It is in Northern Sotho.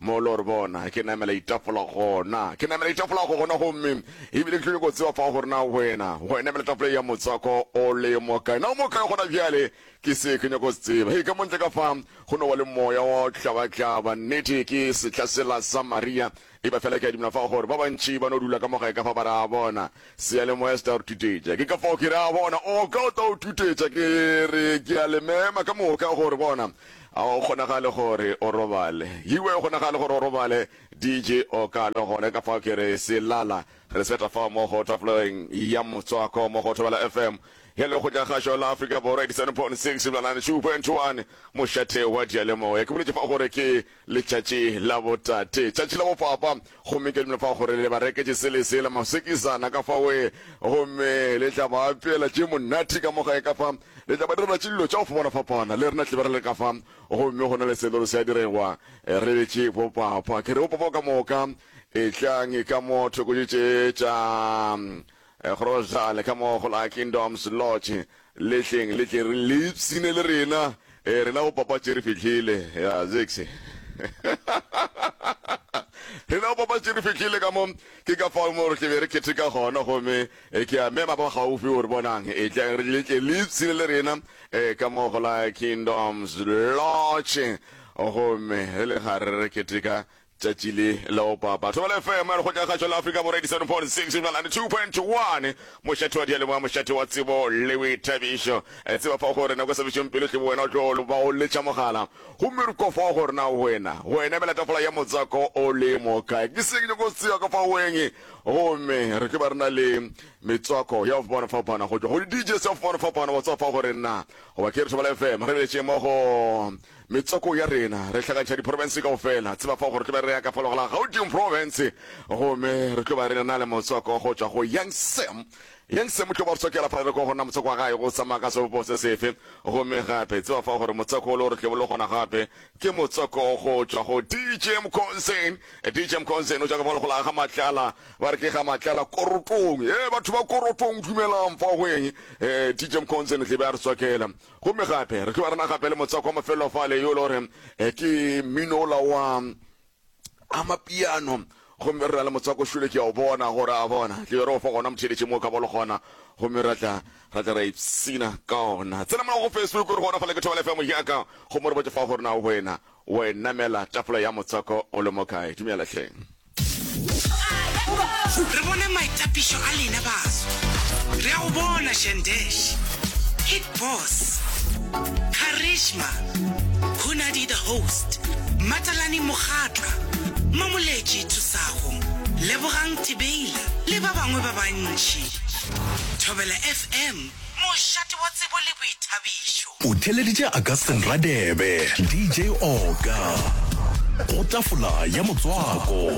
Molo, re bona. Ke namela itafola gona. Ke namela itafola go gona gomme ebile ke tlile go tseba fa gore na wena go namela tafola ya motswako o le mo kae. Na o mo kae gona bjale? Ke se ke nyako se tseba. Hei, ka montle ka fa go no wa le moya wa tlaba-tlaba. Nnete ke sehla sela sa Maria. E ba fela ke a dumela fa gore ba bantši ba no dula ka mo gae ka fa ba re a bona. Seyalemoya se tla re tutetša. Ke ka fao ke re a bona. O ka o tla o tutetša. Ke re ke a le mema ka moka gore bona. A go kgonagale gore o robale? Yio, a go kgonagale gore o robale? DJ, O ka no gone ka fao ke re, Se lala. Re seta fao mo go tafoleng ya motswako mo go Thobela FM, e lego Kgokagagašo la Afrika Borwa, 87.6 Blalane, 2.1 mošate wa diyalemoya. Ke boletše fao gore ke Letšatši la botate, tšatši la bopapa, gomme ke dumela fa gore le ba reketše se le sela, masekisana ka fa we, gomme le tla ba apeela tše monate ka mo gae ka fa, le tla ba direla tše dilo tša go fapana-fapana, le rena tle be re le ka fa. Gomme go na le selo se a diregwa, re betše bopapa. Ke re, Bopapa ka moka, etlang ka mo thoko tše tše tša. Gobjale ka mo go la Kingdoms Lodge, le tleng le tle re le ipshine le rena. Ee, rena bopapatši re fihlile. Ya, Zixi. Rena bopapatši re fihlile ka mo. Ke ka fao mo re ke be re keteka gona, gomme e ke a mema ba gaufi gore, Bonang, e tleng re le tle le ipshine le rena, ee, ka mo go la Kingdoms Lodge. Gomme re le gare re keteka, Tšatši le la opa batho bale FM ya lekgotla kgašo la Afrika Borwa 87.6 go bjala 92.1 mošate wa dialemoya mošate wa tsebo le boithabišo e tseba fa gore nako sebešong pele tle wena o tlo ba o letša mogala gomme re kwa fa gore na wena go ena mela tafola ya motswako o le mo kae ke seng nyoko tseo ka fa weng gomme re ke ba re na le metswako ya fapana fapana go tšwa go di DJs ya fapana fapana go tswa fa gore na goba ke re thobala FM re beletše mo go Metsoko ya rena, re hlakantšha diprofense kaufela. Tseba fao gore re tlo be re ya ka falogo la Gauteng Profense, gomme re tlo ba re na le motsoko go tšwa go Young Sam. Young Sam o tlo ba re tsokela fa re ko go na motsoko wa gae go tsamaya ka sebopo se sefe. Gomme gape, tseba fao gore motsoko o le o re tlebo le gona gape ke motsoko go tšwa go DJ Mkhonzeni. DJ Mkhonzeni o tšwa ka falogo la ga Matlala, ba re ke ga Matlala Korotong. Ee, batho ba Korotong, dumelang, fao go eng? Ee, DJ Mkhonzeni tlebe a re tsokela. Gomme gape re tloga re na gape le motswako wa mafelelo fale, yo e le gore eh, ke mmino ola wa amapiano gomme re na le motswako šole ke ya o bona gore a bona tle re o fa gona motheletše mo ka bolo gona gomme ra tla ra tla ra ipsina ka ona tsena mola go facebook re gona fale ke thobela fm yaka gomme re botse fa gore na wena wa enamela tafola ya motswako o le mo kae dumela tlheng Re bona maitapišo a lena baso. Re a go bona Shandesh, Hit Boss, Karishma, Hunadi the Host, Matalani Mokgatla, Mamoletši Thusago, Lebogang Tibeila le ba bangwe ba bantši. Thobela FM, mošate wa tsebo le boithabišo. O theleditše Augustine Radebe, DJ Oka, go tafola ya motswako.